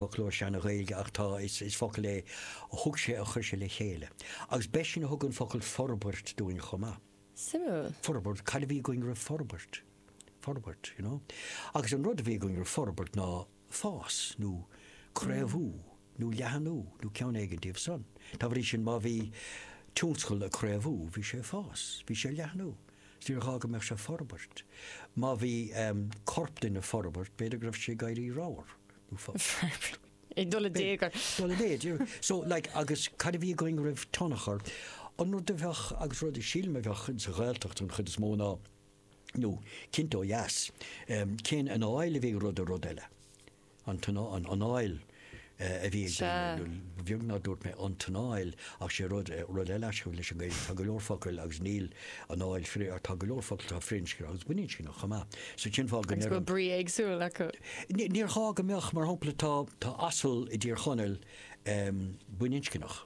fhoclóir Seana-Ghaeilge ach tá, is focal é a thug sé a chuir sé le chéile. Agus b'eisean a thug an focal forbairt dúinn chomh maith. Suimiúil. Forbairt, cad a bhí againn roimh forbairt? Forbairt, you know. Agus an rud a bhí againn roimh forbairt ná fás nó craobhú nó leathnú nó ceann éigin díobh san. Dá bhrí sin má bhí tionscal ag craobhú bhí sé ag fás, bhí sé ag leathnú. So níor ghá go mbeadh sé ag forbairt. Má bhí corp duine ag forbairt b'fhéidir go raibh sé ag éirí ramhar. Ag dul i dtaobh air. Ag dul i méid. So like agus cad a bhí againn roimh tionchar, an rud a bheadh agus rud a sílim a bheadh sa Ghaeltacht an chuid is mó ná nó cinnte ó dheas, cén anáil a bhí ag rud ar rud eile. An an anáil a bhí ag daoine nó ba bheag nár dúirt mé an t-anáil ach sé rud rud eile aisghabh leis an Ghaeilge, tá go leor focail agus níl An Fháil Freer, Tá go leor focal atá firinscneach agus baininscneach chomh maith. So cén fáth go Agus bhfuil ndeireann. brí éagsúil acu. N, Níor ghá go mbeadh. Mar shampla tá, tá asal i dTír Chonaill em baininscneach.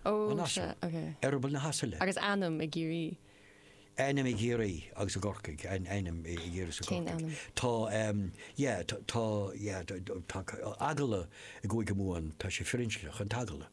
Ó An sea, asal. ok. Eireaball na hasaile. Agus ainm i gCiarraí. Ainm i gCiarraí agus i gCorcaigh. Ain, Ainm i i gCiarraí 's i Cén gCorcaigh. ainm? Tá em yeah tá tá yeah tá tá agallamh i gCúige Mumhan tá sé firinscneach, an t-agallamh.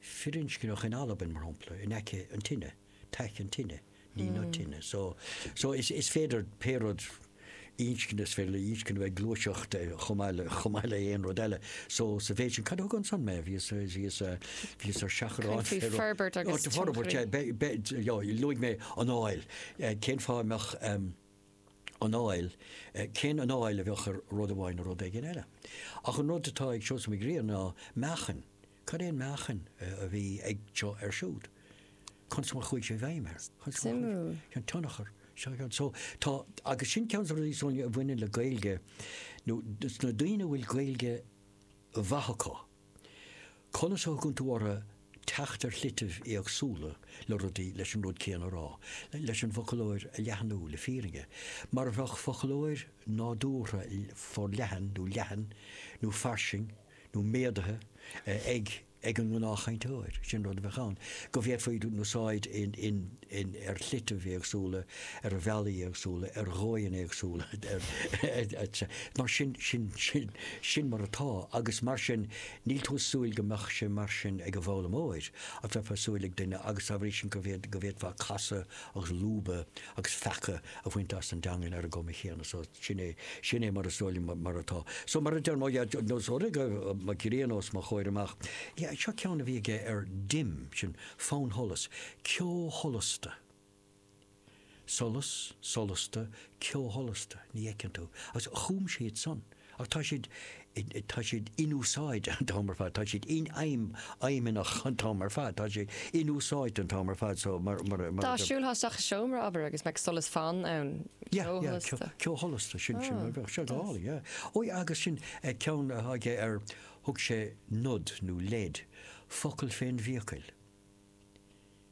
firinscneach in Albain, mar shampla, in aice an tine, taic an tine, ní na tine. So, so is, is féidir pé rud, inscne, is féidir le inscne bheith ag gluaiseacht chomh maith le, chomh maith le aon rud eile. So, sa mhéid sin, cad a thug ansan mé? Bhíos, bhíos, bhíos ar seachrán faoi féir. forbairt agus Áit forbairt, tionchar. be, be, jo, luaigh mé anáil. Cén fáth a mbeadh ehm anáil, cén anáil a bheadh ag rud amháin ar rud éigin eile? Ach an rud atá ag Seosamh Mac Grianna ná meáchan. Cad é an meáchan a bhí ag seo ar siúd? Conas mar chuaigh sé i bhfeidhm air? Conas mar chuaigh Suimiúil. sé, an tionchar? So, tá, agus sin ceann de na rudaí, Sonia, a bhaineann le Gaeilge, nó na daoine a bhfuil Gaeilge mhaith acu, conas a thugann tú orthu teacht ar shlitibh éagsúla le rudaí, leis an rud céanna a rá, leis an bhfoclóir a leathnú, le fírinne, mar a bheadh foclóir nádúrtha forleathan nó leathan nó fairsing, nó méadaithe ag an ngnáthchainteoir, sin rud a bheadh ann, go bhféadfaí a n-úsáid ar shlitibh éagsúla, ar bhealaí éagsúla, ar dhóigheanna éagsúla, etc. Mar sin, sin, sin, sin mar atá agus mar sin níl tú ag súil go mbeadh sé mar sin ag an bhfoghlaimeoir ach bheifeá ag súil ag duine agus dá bhrí sin go bhféadfá casadh agus lúbadh agus feacadh a bhaint as an dteangain ar an gcuma chéanna so. Sin é, sin é mar is dóigh liom mar atá. So mar a deir mo dhaid, nó ós rud é go bhfuil Mac Grianna os mo chomhair amach. Yeah, seo ceann a bhí aige ar dim, sin fannsholas, ceosholasta. Solas, solasta, ceosholasta, ní fheiceann tú. Agus chum siad san. Ach tá siad, tá siad in úsáid an t-am ar fad, tá siad infheidhmeannach an t-am ar fad, tá siad in úsáid an t-am ar fad so mar, mar, mar Tá tú ag siúl isteach i seomra, abair, agus go mbeadh solas fann ann, Yeah, ceo yeah, sholasta. ceo, ceo sholasta, sin, sin, Oh, bheadh sé does. dall, yeah. Ó, agus sin eh, ceann eile aige ar, thug sé nod nó lead, focal fén bhfiacail.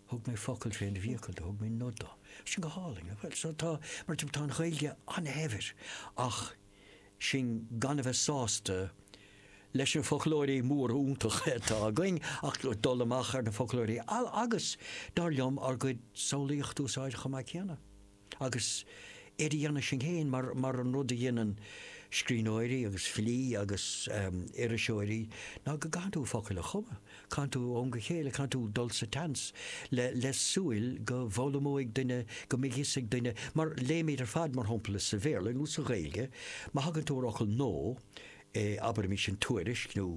Thug mé focal fén bhfiacail do, thug mé nod do. Sin go hálainn. Bhuel, so tá, mar sin, tá an Ghaeilge an-shaibhir ach sinn gan a bheith sásta leis na foclóirí móra iontacha atá againn ach dul amach ar na foclóirí eile agus, dar liom, ár gcuid samhlaíochta a úsáid chomh maith céanna. Agus é do dhéanamh sinn féin, mar an rud a dheineann scríbhneoirí agus filí agus, em, iriseoirí, ná go gcaitheann tú focail a chumadh, caitheann tú ó am go chéile, caitheann tú dul sa tseans le, le súil go bhfoghlaimeoidh duine, go mbeidh a fhios ag duine, mar léimíd ar fad, mar shampla, sa Bhéarla nó sa Ghaeilge, má thagann tú ar fhocal nó, eh, abraimis in Tuairisc nó,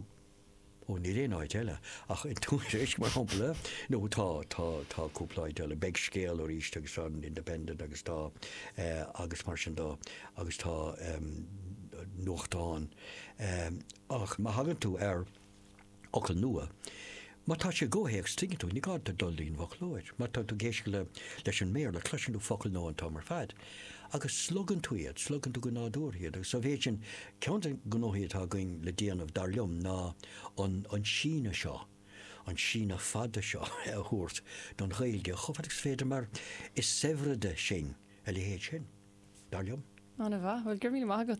Ó, níl aon áit eile ach in Tuairisc, mar shampla. Nó tá, tá, tá cúpla áit eile. Beidh Scéal aríst agus tá an Independent agus tá eh, agus mar sin de, agus tá em, nuachtáin. Em, ach má thagann tú ar fhocal nua, má tá sé i gcomhthéacs tuigeann tú, ní gá duit dul go dtí an bhfoclóir. Má tá tú ag éisteacht le, leis an mBéarla, cloiseann tú focal nua an t-am ar fad. Agus slogann tú iad, slogann tú go nádúrtha iad agus sa mhéid sin, ceann de na gnóthaí atá againn le déanamh, dar liom, ná an síneadh seo, an síneadh fada seo a thabhairt don Ghaeilge chomh fada agus is féidir mar is saibhrede sinn a leithéid sin, dar liom. An-mhaith. Bhuel, go raibh míle maith agat.